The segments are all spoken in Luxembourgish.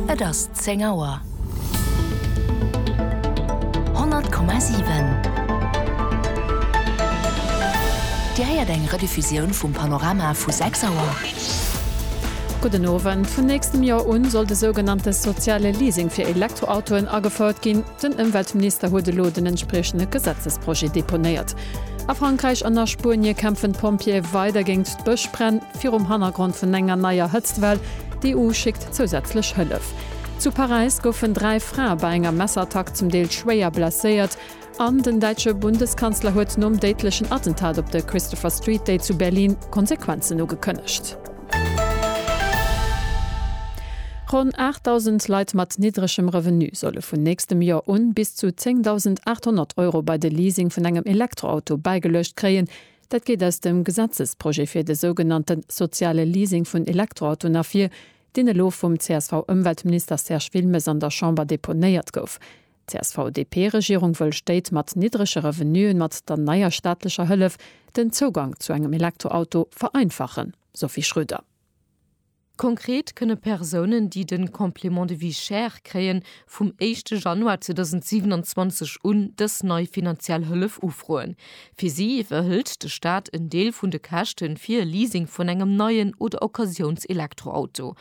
Et ass 10 Auer. 100,7 Dir héiert eng Rediffusioun vum Panorama vu 6 Auer. Gudden Owend. Vun nächstem Joer un soll de sougenannte soziale Leasing fir Elektroautoen agefouert ginn. Den Ëmweltminister huet elo den entspriechende Gesetzesprojet deponéiert. A Frankräich an a Spuenie kämpfen d'Pompjeeë weider géingt d'Bëschbränn. virum Hannergrond vun enger neier Hëtztwell. D'EU schéckt zousätzlech Hëllef. Zu Paräis goufen dräi Frae bei enger Messerattack zum Deel schwéier blesséiert. An den däitsche Bundeskanzler huet nom déidlechen Attentat op de Christopher Street Day zu Berlin Konsequenzen ugekënnegt. Ronn 8.000 Leit mat niddregem Revenu solle vun nächstem Joer un bis zu 10.800 Euro bei de Leasing vun engem Elektroauto bäigeluecht kréien. Dat geet aus dem Gesetzesprojet fir de sougenannte soziale Leasing vun Elektroautoen ervir, deen elo vum CSV-Ëmweltminister Serge Wilmes an der Chamber deponéiert gouf. D'CSV-DP-Regierung wëll Stéit mat niddrege Revenuen mat der neier staatlecher Hëllef den Zougang zu engem Elektroauto vereinfachen, Sophie Schröder. Konkret kënne Persounen, déi de Complément de vie chère kréien, vum éischte Januar 2027 un dës nei finanziell Hëllef ufroen. Fir si iwwerhëlt de Staat en Deel vun de Käschte fir e Leasing vun engem neien oder Occasiouns-Elektroauto.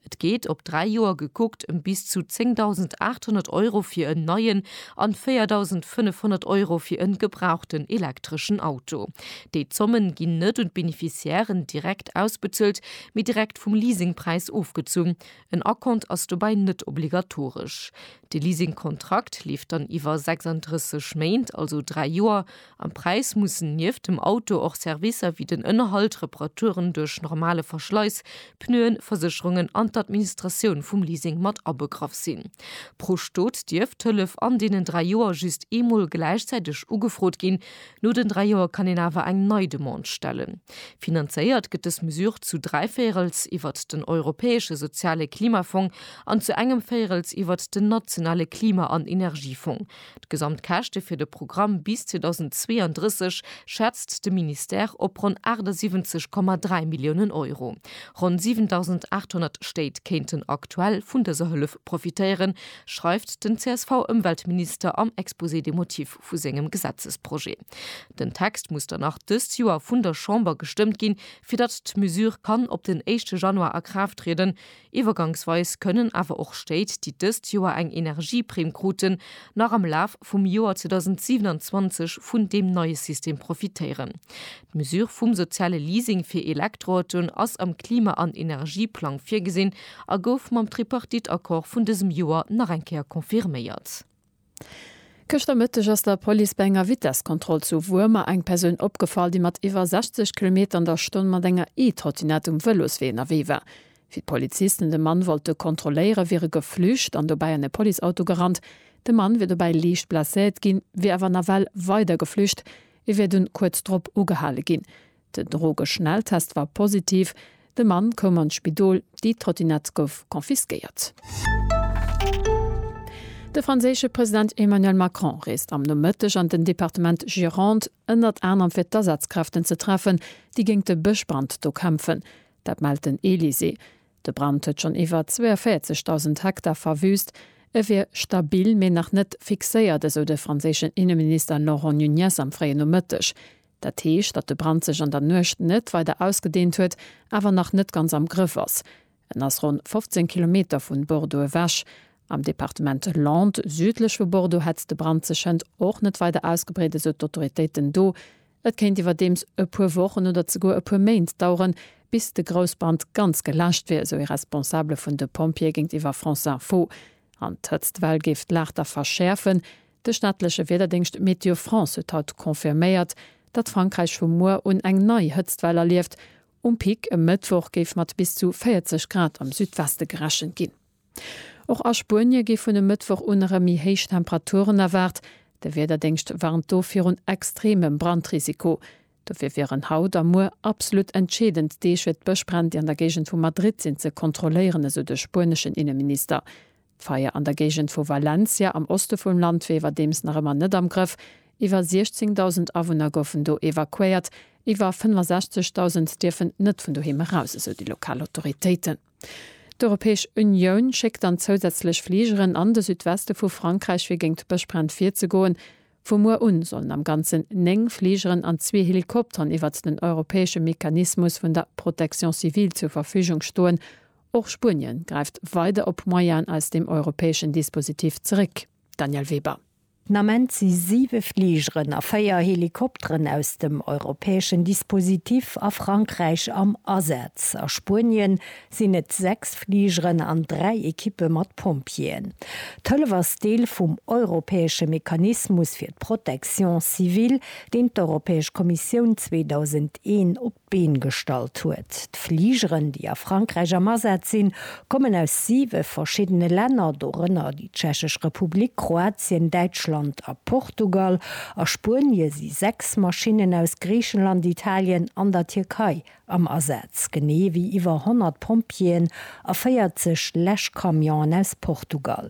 Et geet, op dräi Joer gekuckt, ëm bis zu 10.800 Euro fir en neien an 4.500 Euro fir e gebrauchten elektreschen Auto. Déi Zommen ginn net un d'Beneficiairen direkt ausbezuelt, mee direkt vum Leasingpräis ofgezunn, en Acompte ass dobäi net obligatoresch. De Leasingkontrakt leeft dann iwwer 36 Méint, also 3 Joer. Am Präis mussen nieft dem Auto och Servicer wéi den Ënnerhalt, Reparaturen duerch normale Verschleiss, Pneuen, Versécherungen an d'Administratioun vum Leasing mat abegraff sinn. Pro Stot dierf d'Hëllef an deenen 3 Joer just eemol gläichzäiteg ugefrot ginn, No den dräi Joer kann een awer eng nei Demande stellen. Finanzéiert gëtt dës Mesure zu dräi Véierels iwwert den Europäesche Soziale Klimafong an zu engem Véierels iwwert den nationale Klima an Energiefong. D'gesamt Käschte fir de Programm bis 2032 schätzt de Ministère op ronn 78,3 Milliounen Euro. Ronn 7.800 Stéit kéinten aktuell vun dëser Hëllef profitéieren, schreift den CSV-Ëmweltminister am Exposé des motifs. vu sengem Gesetzesprojet. Den Text muss dann nach dëst Joer vun der Chamber gestëmmt ginn, fir datt d'Mesure kann op den éischte Januar a Kraaft trieden. Iwwergangsweis kënnen awer och Stéit, déi dëst Joer eng Energieprimm kruten, nach am Laf vum Joer 2027 vun deem neie System profitéieren. D'Mesure vum soziale Leasing fir Elektroautoen ass am Klima an Energieplang virgesinn a gouf mam Tripartite-Accord vun dësem Joer nach eng Kéier confirméiert. Gëschter Mëtteg ass der Police bei enger Vitesskontroll zu Wuermer eng Persoun opgefall, déi mat iwwer 60 Kilometer an der Stonn mat enger E-Trottinette um Vëloswee ënnerwee war. Wéi d'Polizisten de Mann wollte kontrolléiere wier e geflücht an dobäi an e Policeauto gerannt. De Mann wier dobäi liicht blesséiert ginn, wier awer nawell weider geflücht. E wier dunn kuerz drop ugehale ginn. Den Drogeschnelltest war positiv, de Mann koum an d'Spidol, déi Trottinett gouf confisquéiert. De franséische President Emmanuel Macron reest am Nomëtteg an den Departement Gironde, ënnert anerem fir d'Asazkräften ze treffen, déi géint de Bëschbrand do kämpfen. Dat mellt den Elysée. De Brand huet schonn iwwer 42.000 Hektar verwüüst. E wier stabil, mee nach net fixéiert, esou de franséischen Inneminister Laurent Nunez am fréien Nomëtteg. Dat heescht, datt de Brand sech an der Nuecht net weider ausgedehnt huet, awer nach net ganz am Grëff ass. En ass ronn 15 Kilometer vun Bordeaux ewech. Am Departement Landes, südlech vu Bordeaux, hätt de Brand sech hënt och net weider ausgebreet, esou d'Autoritéiten do. Et kéint iwwerdeems e puer Wochen oder zeguer e puer Méint daueren, bis de Groussbrand ganz geläscht wier, esou ee Responsabele vun de Pompjeeë géintiwwer France Info. An d'Hëtztwell géif d'Lag da verschäerfen. De staatleche Wiederdéngscht Météo France huet haut confirméiert, datt Frankräich vu muer un eng nei Hëtztwell erlieft. Um Pic e Mëttwoch géif mat bis zu 40 Grad am Südweste gerechent ginn. Och a Spuenie gi vun e Mëttwoch un erëm méi héich Temperaturen erwaart. De Wiederdéngscht warnt do virun extremem Brandrisiko. Dofir wieren haut a muer absolut entscheedend Deeg, fir d'Bëschbränn, déi an der Géigend vu Madrid sinn, ze kontrolléieren, esou de spueneschen Inneminister. D'Feier an der Géigend vu Valencia am Oste vum Land wier iwwerdeems nach ëmmer net am Grëff. Iwwer 16.000 Awunner goufen do evakuéiert, iwwer 65.000 dierfen net vun doheem eraus, esou déi lokal Autoritéiten. D'Europäesch Unioun schéckt dann zousätzlech Fligeren an de Südweste vu Frankräich, fir géint Bëschbränn virzegoen. Vu muer un sollen am Ganzen 9 Fligeren an zwee Helikopteren iwwert den europäesche Mechanismus vun der Protection civile zur Verfügung stoen, Och Spuenien gräift weider op Moyenen aus dem europäeschen Dispositif zeréck, Danièle Weber. Den Ament si 7 Fligeren a 4 Helikopteren aus dem europäeschen Dispositif a Frankräich am Asaz. A Spuenien sinn et 6 Fligeren an 3 Ekippe mat Pompjeeën. D'Hëllef ass Deel vum europäesche Mechanismus fir d'Protection civile, deen d'Europäesch Kommissioun 2001 op d'Been gestallt huet. D'Fligeren, déi a Frankräich am Asaz sinn, kommen aus siwe verschiddene Länner, dorënner déi Tschechesch Republik, Kroatien, Däitschland a Portugal. A Spuenie si sechs Maschinnen aus Griichenland, Italien an der Tierkei am Asaz, genee ewéi iwwer 100 Pompjeeën a 40 Läschcamionen aus Portugal.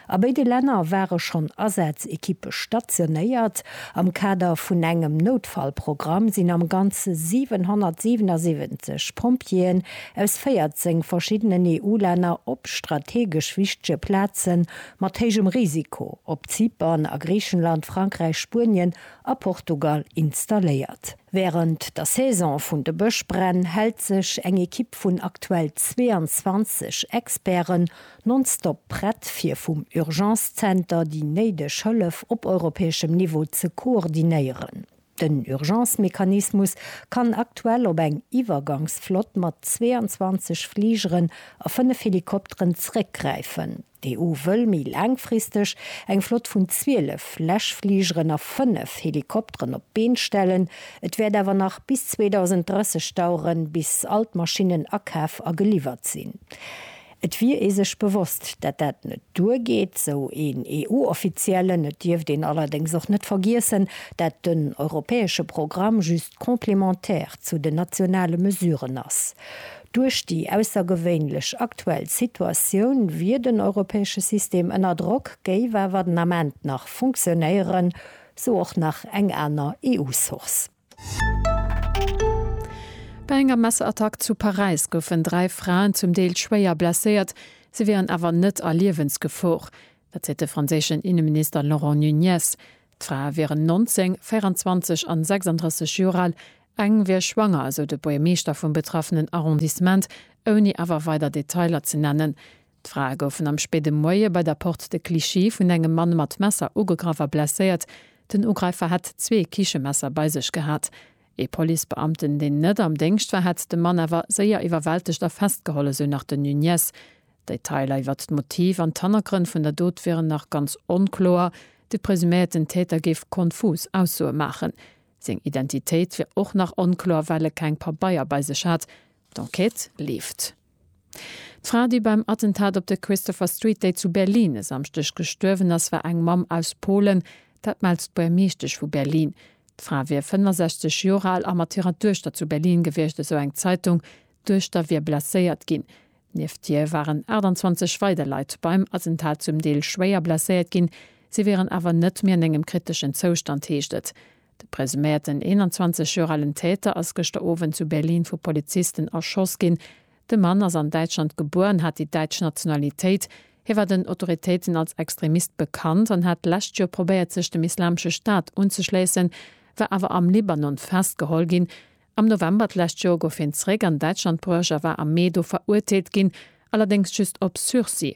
A béide Länner ware schonn Asaz-Ekippe stationéiert. Am Kader vun engem Noutfallprogramm sinn am Ganze 777 Pompjeeën aus 14 verschiddenen EU-Länner op strategesch wichtege Plaze mat héijem Risiko op Zypern, a Griichenland, Frankräich, Spuenien a Portugal installéiert. Wärend der Saison vun de Bëschbränn hält sech eng Ekipp vun aktuell 22 Experten Nonstop prett fir vum Urgence Center déi néideg Hëllef op europäeschem Niveau ze koordinéieren. Den Urgence Mechanismus kann aktuell op eng Iwwergangsflott mat 22 Fligeren a 5 Helikopteren zeréckgräifen. D'EU wëll méi laangfristeg eng Flott vun 12 Läschfligeren a 5 Helikopteren op d'Been stellen. Et wäert awer nach bis 2030 daueren, bis all d'Maschinnen akaf a geliwwert sinn. Et wier ee sech bewosst, dat dat net duer geet, esou een EU-Offiziellen. Et dierft een allerdéngs och net vergiessen, dat den europäesche Programm just complémentaire zu den nationale Mesuren ass. Duerch déi aussergewéinlech aktuell Situatioun wier den europäesche System ënner Drock, géif awer den Ament nach funktionéieren, sou och nach eng aner EU-Source. Bei enger Messerattack zu Paräis goufen dräi Fraen zum Deel schwéier blesséiert, se wieren awer net a Liewensgefor. Dat seet de franséischen Inneminister Laurent Nunez. D'Frae wieren 19, 24 an 36 Joer al, eng wier schwanger, esou de Buergermeeschter vum betraffenen Arrondissement, ouni awer weider Detailer ze nennen. D'Frae goufen am spéide Moie bei der Porte de Clichy vun engem Mann mat Messer ugegraff a blesséiert. Den Ugräifer hätt zwee Kichemesser bei sech gehat. Ee Policebeamten, deen net am Déngscht war, hätt de Mann awer séier iwwerwältegt a festgeholl, esou nach den Nuñez. D'Detailer iwwert d'Motiv an d'Hannergrënn vun der Dot wieren nach ganz onkloer. De presuméierten Täter géif konfus Aussoe maachen. Seng Identitéit wier och nach onkloer, well e keng Pabeier bei sech hat. D'Enquête leeft. D'Fra, déi beim Attentat op der Christopher Street Day zu Berlin e Samschdeg gestuerwen ass, war eng Mamm aus Polen. Dat mellt d'Buermeeschtesch vu Berlin. D'Fra wier 65 Joer al a mat hirer Duechter zu Berlin gewiescht, esou eng Zeitung. D'Duechter wier blesséiert ginn. Nieft hir waren 28 weider Leit beim Attentat zum Deel schwéier blesséiert ginn. Si wieren awer net méi an engem kriteschen Zoustand, heescht et. De presuméierten 21 Joer alen Täter ass gëschter Owend zu Berlin vu Polizisten erschoss ginn. De Mann ass an Däitschland gebuer an hat déi däitsch Nationalitéit. Hie war den Autoritéiten als Extremist bekannt an hat d'lescht Joer probéiert sech dem Islamesche Staat unzeschléissen, war awer am Libanon festgeholl ginn. Am November d'lescht Joer gouf hien zeréck an Däitschland bruecht a war am Mee do verurteelt ginn, allerdéngs just op Sursis.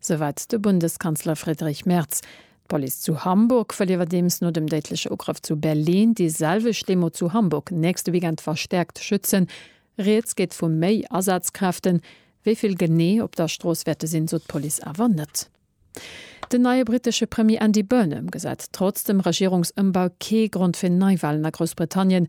Souwäit de Bundeskanzler Friedrich Merz. D'Police zu Hamburg wëll iwwerdeems no dem déidleche Ugrëff zu Berlin déi selwecht Demo zu Hamburg nächste Weekend verstäerkt schützen. Rieds geet vu méi Asazkräften. Wéi vill genee op der Strooss wäerte sinn, sot d'Police awer net. Den neie brittesche Premier Andy Burnham gesäit trotz dem Regierungsëmbau kee Grond fir Neiwalen a Groussbritannien.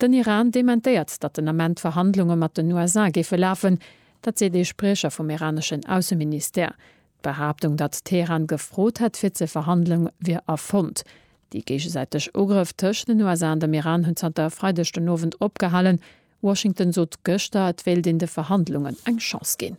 Den Iran dementéiert, datt den Ament d'Verhandlunge mat den USA géife lafen. Dat seet ee Spriecher vum iraneschen Ausseministère. D'Behaaptung, datt Teheran gefrot hätt fir ze verhandelen, wier erfonnt. Déi géigesäiteg Ugrëff tëscht den USA an dem Iran hunn zanter e Freideg den Owend opgehalen. Washington sot gëschter, et wéilt een de Verhandlungen eng Chance ginn.